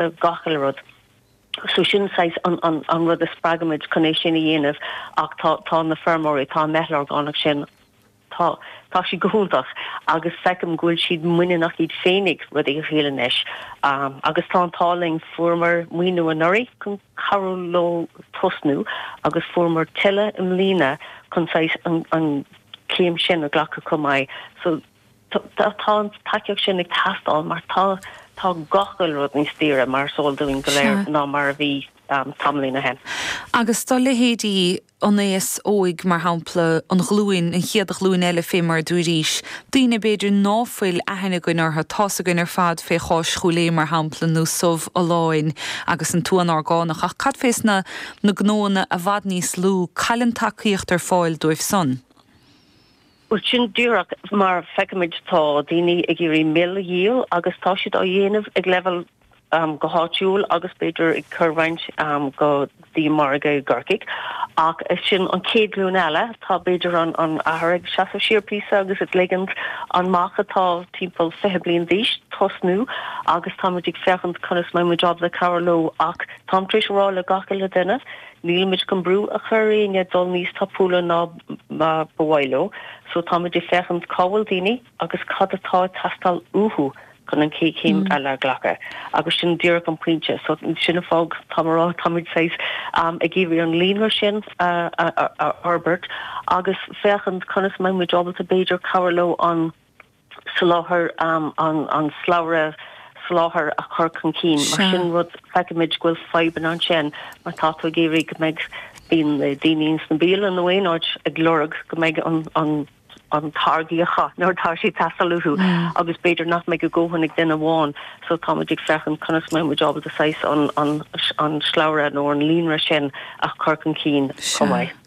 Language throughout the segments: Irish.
do gach uile rud. So sin saghas an rud a spreagaimid chun é sin a dhéanamh ach tá tá na feirmeoirí, tá an mheitheal orgánach sin, tá tá siad go hiontach agus feicim go bhfuil siad muiníneach iad féinig rudaí a dhíol anois. Agus tá an t-ádh linn, fuaireamar maoiniú anuraidh chun cabhrú leo tosnú agus fuaireamar tuilleadh i mbliana chun saghas an an céim sin a ghlacadh chomh maith. So Tá an tacaíocht sin ag teastáil mar tá tá gach uile rud níos daoire mar is eol dúinn go léir ná mar a bhí tamaillín ó shin. Agus do leithéidí an aos óig, mar shampla, an ghlúin, an chéad ghlúin eile fé mar a dúirís, daoine b'fhéidir ná fuil aithne againn orthu, tá's againn ar fad fé Cháis Chúil Aodha mar shampla nó subh Folláin agus an t-uan orgánach ach cad fés na na gnóanna i bhfad níos lú, cad í an tacaíocht ar fáil dóibh san. Bhuel, sin díreach mar a feicimid. Tá daoine ag iarraidh mil a dhíol agus tá siad á dhéanamh ag leibhéal go háitiúil agus b'fhéidir ag cur roinnt go dtí margadh i gCorcaigh. Ach sin an chéad ghlúin eile. Tá b'fhéidir an athair ag seasamh siar píosa agus ag ligint an mac atá timpeall fiche bliain d'aois tosnú agus táimid ag féachaint conas mbeidh muid ábalta cabhrú leo ach táim tar éis a rá le gach uile duine Nílimid chun brú a chur ar éinne dul níos tapúla ná mar ba mhaith leo, so táimid ag féachaint cá bhfuil daoine agus cad atá ag teastáil uathu chun an chéad chéim eile a ghlacadh agus sin díreach an pointe. So sin an fáth táim ag rá táimid saghas ag iarraidh an líonra sin a fhorbairt agus féachaint conas a mbeimid ábalta b'fhéidir cabhrú leo an soláthar an slabhra soláthair a chur chun cinn. Mar sin rud, feicimid go bhfuil fadhbanna ansin mar tá tú ag iarraidh go mbeidh daoine ins na bialann nó aon áit ag lorg go mbeidh an an an táirgí acu nuair tá sé ag teastáil uathu agus b'fhéidir nach mbeidh a dhóthain ag duine amháin. So táimid ag féachaint conas mbeidh muid ábalta saghas an an an slabhra nó an líonra sin a chur chun cinn chomh maith.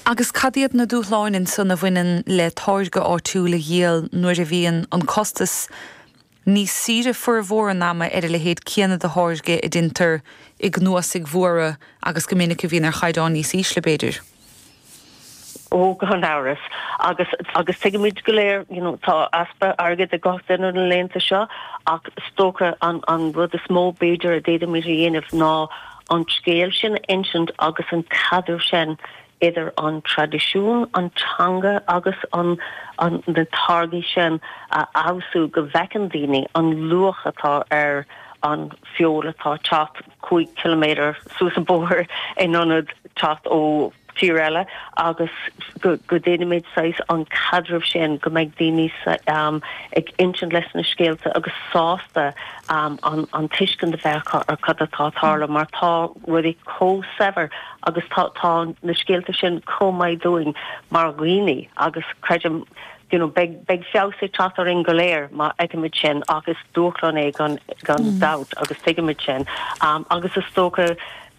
Agus cad iad na dúshláin ansan a bhaineann le táirge áitiúil a dhíol nuair a bhíonn an costas níos saoire formhór an ama ar a leithéid céanna de tháirge a deintear i gcnuasaigh mhóra agus go minic a bhíonn ar chaighdeán níos ísle, b'fhéidir? Ó, gan amhras. Agus, agus tuigimid go léir, you know, tá easpa airgid ag gach duine na laethanta seo ach is dócha an an rud is mó b'fhéidir a d'fhéadfaimid a dhéanamh ná an scéal sin a insint agus an caidreamh sin idir an traidisiún, an teanga agus na táirgí sin a fheabhsú go bhfeiceann daoine an luach atá ar an bhfeoil atá ag teacht cúig chiliméadar suas an bóthar in ionad teacht ó tír eile agus go ndéanfaimid saghas an caidreamh sin, go mbeidh daoine ag insint leis na scéalta agus sásta an tuiscint a bheith acu ar cad atá ag tarlú mar tá rudaí chomh saibhir agus tá na scéalta sin chomh maith dúinn mar dhaoine agus creidim you know beidh feabhas ag teacht orainn go léir má fheicimid sin ach is dúshlán é gan dabht agus tuigimid sin agus is dócha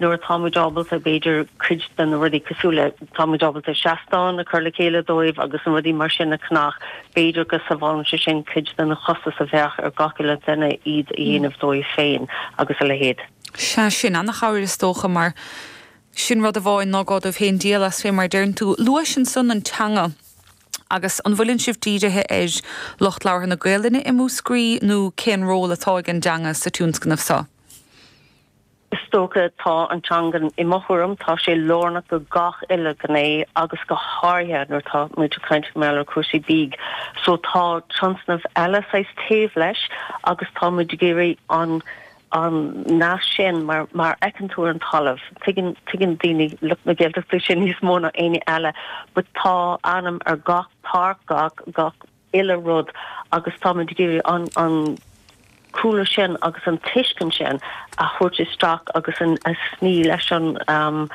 nuair atá muid ábalta, b'fhéidir, cuid de na rudaí cosúil le, tá muid ábalta seastán a chur le chéile dóibh agus na rudaí mar sin a cheannach, b'fhéidir go sábhálann sé sin cuid den chostas a bheadh ar gach uile dhuine iad a dhéanamh dóibh féin agus a leithéid. Sea, sin an-chabhair is dócha mar sin rud amháin ná gá dóibh féin díol as fé mar a deireann tú. Luais ansan an teanga agus an bhfuileann sibh dírithe ar lucht labhartha na Gaoluinne i Múscraí nó cén ról atá ag an dteanga sa tionscnamh so? Is dócha tá an teanga, i mo thuairim, tá sé lárnach do gach uile ghné agus go háirithe nuair atá muid ag caint mar gheall ar cúrsaí bídh. So tá tionscnamh eile saghas taobh leis agus tá muid ag iarraidh an an nasc sin mar mar fheiceann tú ar an talamh, tuigeann tuigeann daoine lucht na Gaeltachta sin níos mó ná éinne eile but tá ainm ar gach páirc, gach gach. uile rud agus táimid ag iarraidh an cúlra sin agus an tuiscint sin a thabhairt isteach agus a sníomh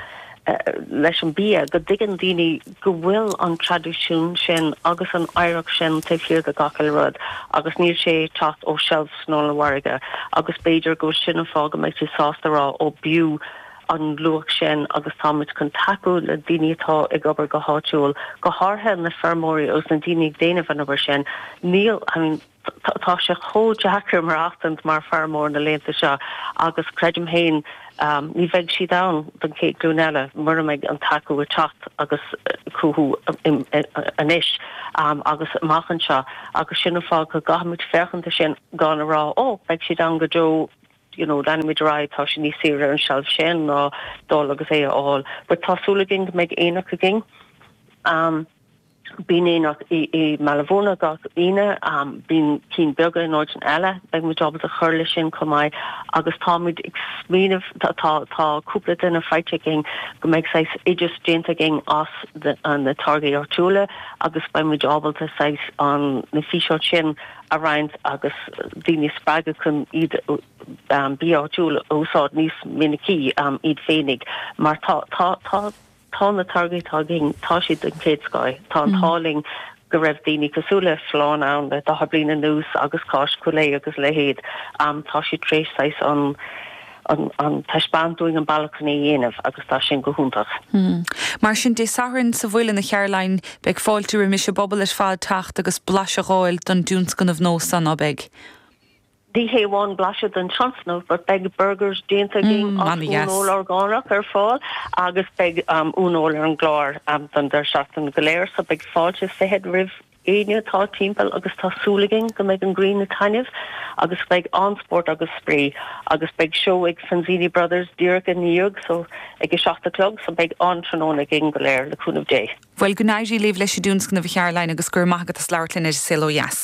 leis an bia, go dtuigeann daoine go bhfuil an traidisiún sin agus an oidhreacht sin taobh thiar de gach uile rud agus níl sé ag teacht ó shelves an ollmhargaidh agus b'fhéidir go bhfuil sin an fáth go mbeidh siad sásta a rá 'Ó b'fhiú an luach sin agus táimid chun tacú le daoine atá ag obair go háitiúil, go háirithe na feirmeoirí agus na daoine ag déanamh an obair sin. Níl, I mean, tá sé chomh deacair maireachtaint mar feirmeoir na laethanta seo agus creidim féin ní bheidh siad ann don chéad glúin eile mura mbeidh an tacú ag teacht agus cothú anois agus amach anseo agus sin an fáth go gcaithfimid féachaint ar sin gan a rá 'Ó, beidh siad ann go deo'. you know, leanfaimid ar aghaidh, tá sé níos saoire ar an tseilf sin ná dul agus é a fháil. But tá súil againn go mbeidh aonach againn. Um Bíonn aonach i, i mBaile Bhuirne gach Aoine, um bíonn cinn beaga in áiteanna eile, beidh muid ábalta cur leis sin chomh maith agus táimid ag smaoineamh, tá, tá, tá cúpla duine faighte againn go mbeidh saghas oideas déanta againn as na, uh, na táirgí áitiúla agus beidh muid ábalta saghas an, na físeáin sin a roinnt agus daoine a spreagadh chun iad bia áitiúil a úsáid níos minicí iad féinig mar tá, tá, tá, tá na táirgí atá againn, tá siad den chéad scoth. Tá an t-ádh linn go raibh daoine cosúil le Folláin ann le daichead bliain anuas agus Cáis Coolea agus a leithéid, tá siad tar éis saghas an, ag taispeáint dúinn an bealach chun é a dhéanamh agus tá sin go hiontach. Mar sin, Dé Sathairn sa Mhuileann, a Charoline, beidh fáilte roimis an bpobal ar fad teacht agus blaiseadh a fháil den dtionscnamh nó? Ó beidh, ní hé amháin blaiseadh den tionscnamh, but beidh burgers déanta againn as uaineoil orgánach ar fáil agus beidh uaineoil ar an gclár don deireadh seachtaine go léir, so beidh fáilte is fiche roimh éinne atá timpeall agus tá súil againn go mbeidh an ghrian ag taitneamh agus beidh an-spórt agus spraoi agus beidh seó ag Fanzini Brothers díreach ina dhiaidh so ag a seacht a chlog so beidh an-tráthnóna againn go léir le cúnamh Dé. Bhuel go n-éirí libh leis an dtionscnamh a Charoline agus go raibh maith agat as labhairt linn ar Saol Ó Dheas.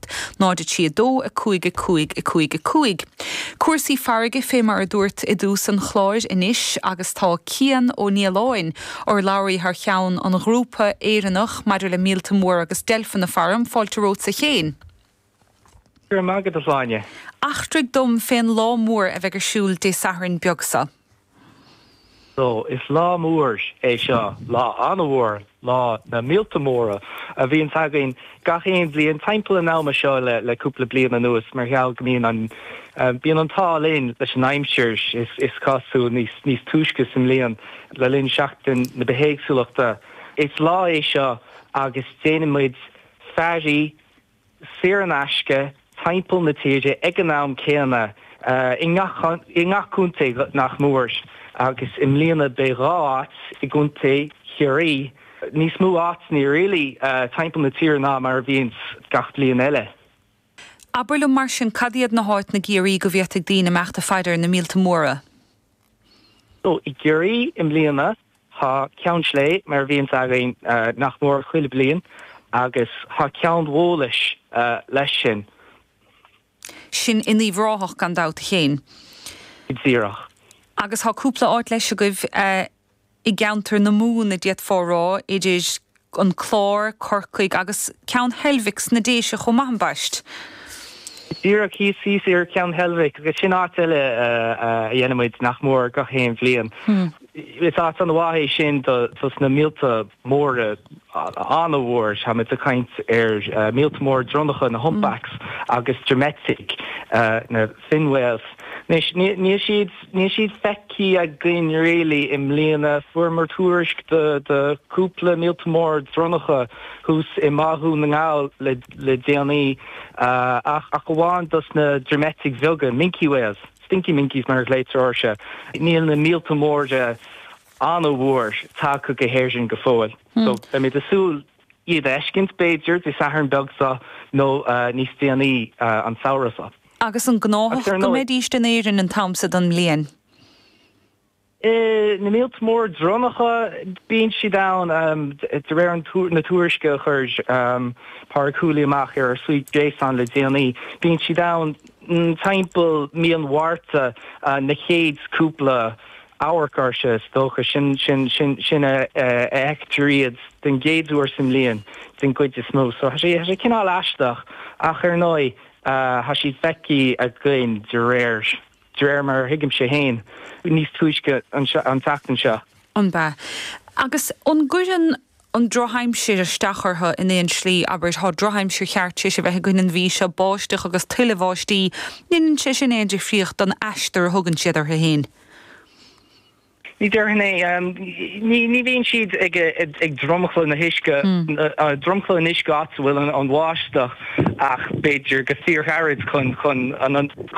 0 3 2 5 5 5 5 Cúrsaí farraige Fé mar a dúirt i dtús an chláir, anois agus tá Cian Ó Nialáin, urlabhraí thar cheann an Ghrúpa Éireannach maidir le Míolta Móra agus Deilfeanna faram, fáilte romhat a Chéin. Go raibh maith agat, a Shláine. Eachtraigh dom fén lá mór a bheidh ar siúl Dé Sathairn beag seo. So, is lá mór é seo, lá an-mhór, lá na míolta móra, a bhíonns againn gach aon bhliain timpeall an ama seo le cúpla bliain anuas mar gheall go mbíonn an, bíonn an t-ádh linn leis an aimsir, is cosúil, níos túisce sa mbliain, le linn Seachtain na Bithéagsúlachta. Is lá é seo agus déanann muid fairí saor in aisce, timpeall na tíre ag an am céanna, i ngach contae nach mór, agus i mbliana beidh dhá áit i gContae Chiarraí, níos mó áiteanna really timpeall na tíre ná mar a bhíonn gach bliain eile. Abair liom mar sin, cad iad na háiteanna i gCiarraí go bhféadfaidh daoine imeacht ag faire ar na míolta móra? So i gCiarraí i mbliana tá Ceann Sléibhe mar a bhíonns againn nach mór chuile bliain agus tá Ceann Bhólais leis sin. Sin in Uíbh Ráthach gan dabht a Chéin. Go díreach. Agus tá cúpla áit leis agaibh. I gceantar na Mumhan a d'fhéadfá a rá, idir an Clár, Corcaigh agus Ceann Heilbhic sna Déise chomh maith, ambaist. Go díreach, thíos ar Ceann Heilbhic agus sin áit eile a dhéanann muid nach mór gach aon bhliain. Is áit an-mhaith é sin dos na míolta móra, an-mhór. Táimid ag caint ar mhíolta móra dronnacha, na humpbacks agus droimeitigh, na fin whales. Anois níl siad. Níl siad feicthe againn really i mbliana. Fuaireamar tuairisc de chúpla míolta mór dronnacha thuas i mBá Dhún na nGall le déanaí ach amháin dos na droimeitigh bheaga, minke whales, stinky minkies mar a ghlaoitear orthu. Níl na míolta móra an-mhór tagtha go hÉirinn go fóill so beimid ag súil. iad a fheiscint, b'fhéidir, Dé Sathairn beag so nó níos déanaí an samhradh so. Agus an gnáthach go mbeidís in Éirinn an t-am so den mbliain? Na míolta mór dronnacha, bíonn siad ann, de réir na tuairisce a chuir Pádraig Whooley amach ar ár suíomh gréasáin le déanaí, bíonn siad ann timpeall mí an Mhárta na chéad cúpla Amharc ar sin, is dócha. Sin, sin a fheictear iad den gcéad uair sa mbliain, den gcuid is mó. So tá sé cineál aisteach, ach ar ndóigh, tá siad feicthe againn de réir de réir mar a thuigimse féin, níos túisce an tseachtain seo. An ea? Agus an gcuireann. an drochaimsir isteach orthu in aon slí, abair, tá drochaimsir cheart tar éis a bheith againn an mhí seo, báisteach agus tuilleadh bháistí, ní dhéanann sé sin aon difríocht don aistear a thugann siad orthu fhéin. Ní déarfainn é. Ní bhíonn siad ag dromchla na huisce, dromchla an uisce áit a bhfuil an bháisteach ach b'fhéidir go fíorghairid chun chun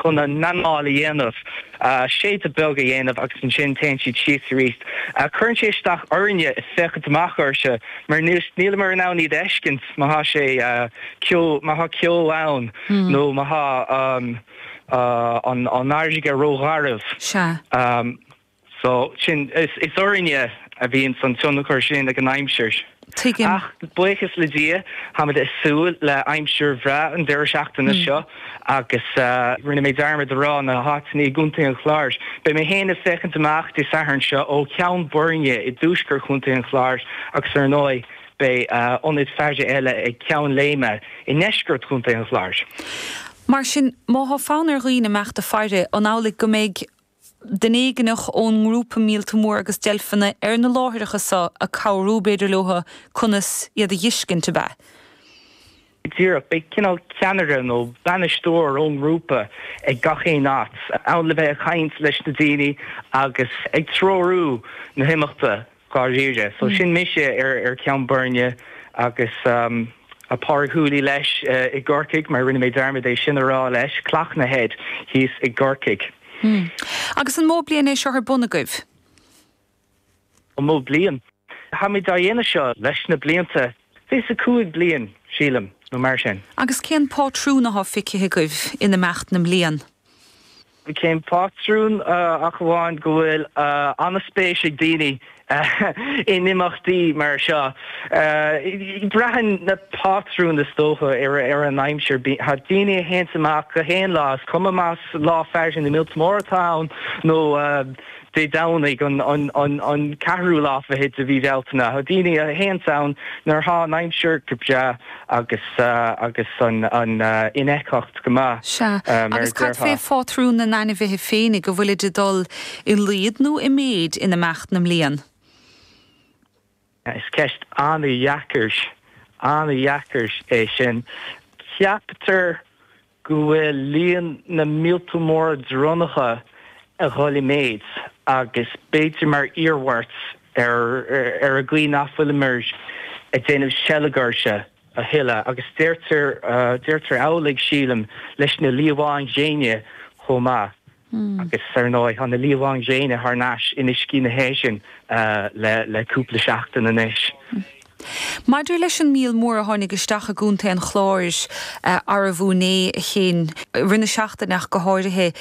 chun a n-anáil a dhéanamh. séideadh beag a dhéanamh agus ansin téann siad síos aríst. Cuireann sé isteach orainne féachaint amach orthu mar nílimid in ann iad a fheiscint má thá sé, ceo, má thá ceo ann nó má thá an fharraige ró-gharbh. Sea. So sin, is orainne a bhíonns an tionchar sin ag an aimsir. Tuigim. Ach buíochas le Dia, táimid ag súil le aimsir bhreá an deireadh seachtaine seo agus rinne mé dearmad a rá, na háiteanna i gContae an Chláir. Beidh mé féin ag féachaint amach Dé Sathairn seo ó Cheann Boirne i dtuaisceart Chontae an Chláir agus ar ndóigh beidh ionaid faire eile ag Ceann Léime i ndeisceart Chontae an Chláir. Mar sin, má tá fonn ar dhaoine amach ag faire, an amhlaidh go mbeidh duine éigineach ón ngrúpa míolta mór agus deilfeanna ar na láithreacha seo ag cabhrú, b'fhéidir leo conas iad a fheiscint, ab ea? Díreach. Beidh cineál ceannaire nó bainisteoir ón ngrúpa ag gach aon áit, ann le bheith ag caint leis na daoine agus ag treorú na himeachta. dháiríre. So sin mise ar Cheann Boirne agus Pádraig Whooley leis i gCorcaigh, mar rinne mé dearmad é sin a rá leis, Cloghna Head thíos i gCorcaigh. Agus an mó bliain é seo ar bun agaibh? An mó bliain? Táimid á dhéanamh seo leis na blianta, 25 bliain, sílim, nó mar sin. Agus cén pátrún atá feicthe agaibh in imeacht na mblian? Cén pátrún? Ach amháin go bhfuil an-spéis ag daoine in imeachtaí mar seo. Braitheann na pátrúin is dócha ar an aimsir. Tá daoine a théanns amach gach aon lá, is cuma más lá faire na míolta mór atá ann nó Dé Domhnaigh an ceathrú lá fichead de mhí Bhealtaine. Tá daoine a théanns ann nuair atá an aimsir go breá agus an infheictheacht go maith, agus cad fé phátrún na n-ainmhithe féinig, an bhfuilid ag dul i laghad nó i méid in imeacht na mblian? Is ceist an-deacair é sin. Ceaptar go bhfuil líon na míolta móra dronnacha ag dhul i méid agus b'fhéidir mar iarmhairt ar an gcaoi nach bhfuilimid ag déanamh seilge orthu a thuilleadh. Agus deirtear amhlaidh, sílim, leis na liamháin ghréine chomh maith. Agus ar ndóigh, tá na liamháin ghréine thar n-ais in uiscí na hÉireann le cúpla seachtain anois. Maidir leis an míol mór a tháinig isteach i gContae an Chláir arú inné, i gcionn deireadh na seachtaine ach go háirithe,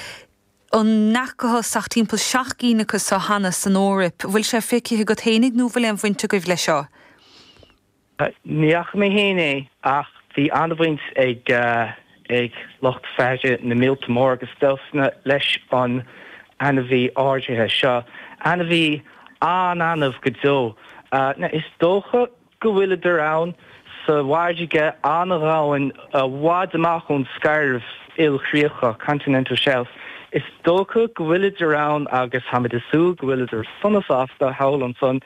ní fhacthas ach timpeall seacht gcinn acu seo cheana san Eoraip? Bhfuil sé feicthe agat féin nó bhfuil aon bhaint agaibh leis seo? Ní fhaca mé féin é ach bhí an-bhaint ag ag lucht faire na míolta mór agus deilfeanna leis an ainmhí áirithe seo. Ainmhí an-annamh go deo. Is dócha go bhfuileadar ann sa bhfarraige an-dhomhain i bhfad amach ón scairbh ilchríochach, continental shelf. Is dócha go bhfuileadar ann agus táimid ag súil go bhfuileadar sona sásta thall ansan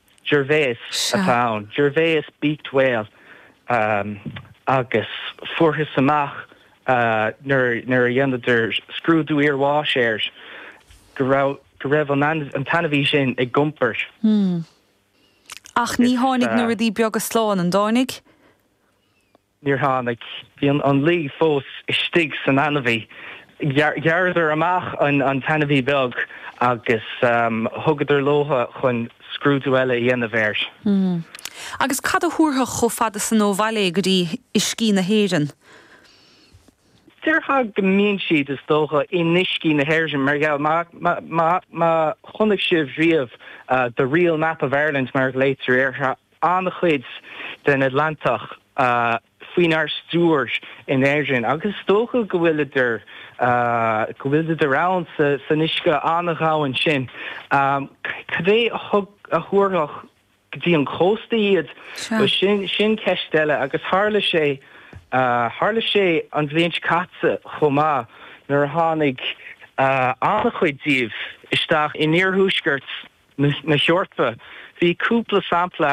Gervais atá ann, Gervais beaked whale, agus fuarthas amach nuair a dhéanadar scrúdú iarbháis air go raibh an t-ainmhí sin ag iompar. Hmm. Ach ní tháinig na rudaí beaga slán, an dtáinig? Níor tháinig. Bhí an lao fós istigh san ainmhí. Ghearradar amach an t-ainmhí beag agus thugadar leo chun scrúdú eile a dhéanamh air. Agus cad a thabharfadh chomh fada san ó bhaile é go dtí uiscí na hÉireann? Déarfá go mbíonn siad, is dócha, in uiscí na hÉireann mar gheall, má chonaic sibh riamh The Real Map of Ireland mar a ghlaoitear air, an-chuid den Atlantach faoinár stiúir in Éirinn agus is dócha go bhfuileadar, go bhfuileadar ann san uisce an-dhomhain sin. Cad é a thabharfadh go dtí an cósta iad? Bhuel, sin ceist eile agus tharla sé, tharla sé an bhliain seo caite chomh maith nuair a tháinig an-chuid díobh isteach in iarthuaisceart na hEorpa. Bhí cúpla sampla.